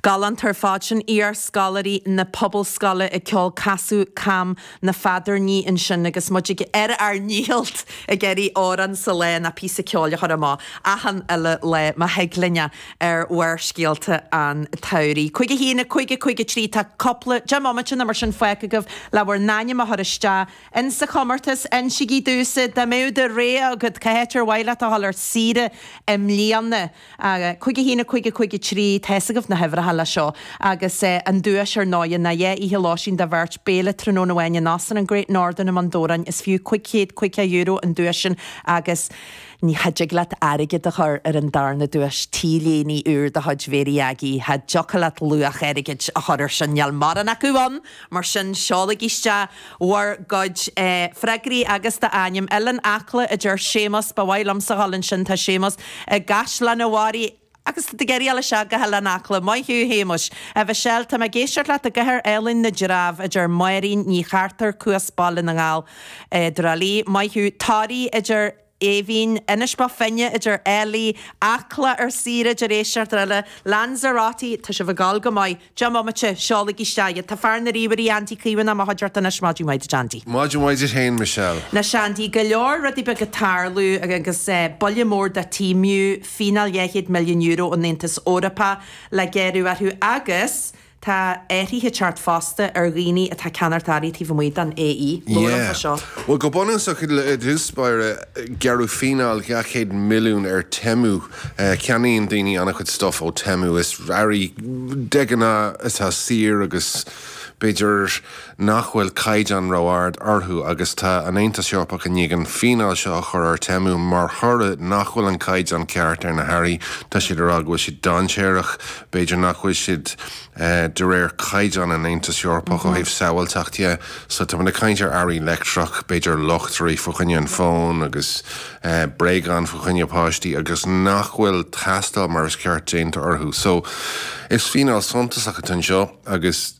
Galánta ar fad sin, iar-scoláirí na Pobalscoile ag ceol Casadh Cam na Feadarnaí ansin agus muid ar ár ndícheall ag iarraidh amhrán sa lá nó píosa ceoil a chur amach achan uile lá má thig linn é ar Bharrscéalta an tsamhraidh. Cúig a haon, a cúig, a cúig, a trí, tá cúpla, deich mbomaite nó mar sin fágtha agaibh le bhur n-ainm a chur isteach in sa chomórtas. Insígí domhsa, dá mbeadh do rogha agat, cá háit ar mhaith leat a dhul ar saoire i mbliana? Cúig a haon, a cúig, a cúig, a trí, tá a fhios agaibh na huimhreacha leis seo, agus an duais ar ndóighe ná dhá oíche lóistín dá bheirt, béile tráthnóna amháin in Óstán an Great Northern i mBun Dobhráin. Is fiú cúig chéad caoga euro an duais sin agus. ní, cha dtig leat airgead a chur ar an darna duais, T-léine úr de chuid Mhary Aggie. Cha dtiocfadh leat luach airgid a chur air sin, níl mórán acu ann, mar sin seolaigí isteach. bhur gcuid freagraí agus do ainm. Oileán Acla, a deir Séamus. Ba mhaith liomsa a dhul ansin. Tá Séamus i gCaisleán an Bharraigh agus tá ag éirí leis seo go hOileán Acla. Maith thú, Shéamuis. A Mhichelle, tá mé ag éisteacht leat i gCathair Álainn na dTreabh, a deir Máirín Ní Chartair, Cuas, Baile na nGall a deir Ollie. Maith thú. Toraigh, a deir. Eimhín, Inis Bó Finne, a deir Ellie, Acla, ar saoire a deir éisteoir eile, Lanzarote, tá sibh ag gabháil go maith, 10 mbomaite, seolaigí isteach iad, tá fear na ríomhairí, Andy Caomhánach, i mo chuideachta anois, maidin mhaith duit Andy. Maidin mhaith duit féin Michelle. Anois Andy, go leor rudaí beaga ag tarlú agus buille mór do Temu, fíneáil €200 milliún ón Aontas Eorpach le gearradh orthu agus, Tá athruithe ag teacht fosta ar dhaoine atá ag ceannacht earraí taobh amuigh den AE. Luaim é seo. Yeah. Bhuel, go bunúsach, i dtús báire, gearradh fíneáil 200 milliún ar Temu. Ceannaíonn daoine an-chuid stuff ó Temu. Is earraí, de ghnáth, atá saor agus, b'fhéidir, nach bhfuil caighdeán ró-ard orthu agus tá an Aontas Eorpach i ndiaidh an fíneáil seo a chur ar Temu mar thoradh nach bhfuil an caighdeán ceart ar na hearraí. Tá siad ag rá go bhfuil siad dainséarach, b'fhéidir nach bhfuil siad de réir caighdeán an Aontas Eorpach ó thaobh sábháilteacht dhe. So tá muid ag caint ar earraí leictreach, b'fhéidir luchtairí fá choinne an fón agus bréagáin fá choinne páistí agus nach bhfuil tástáil mar is ceart déanta orthu. So is fíneáil suntasach atá anseo agus.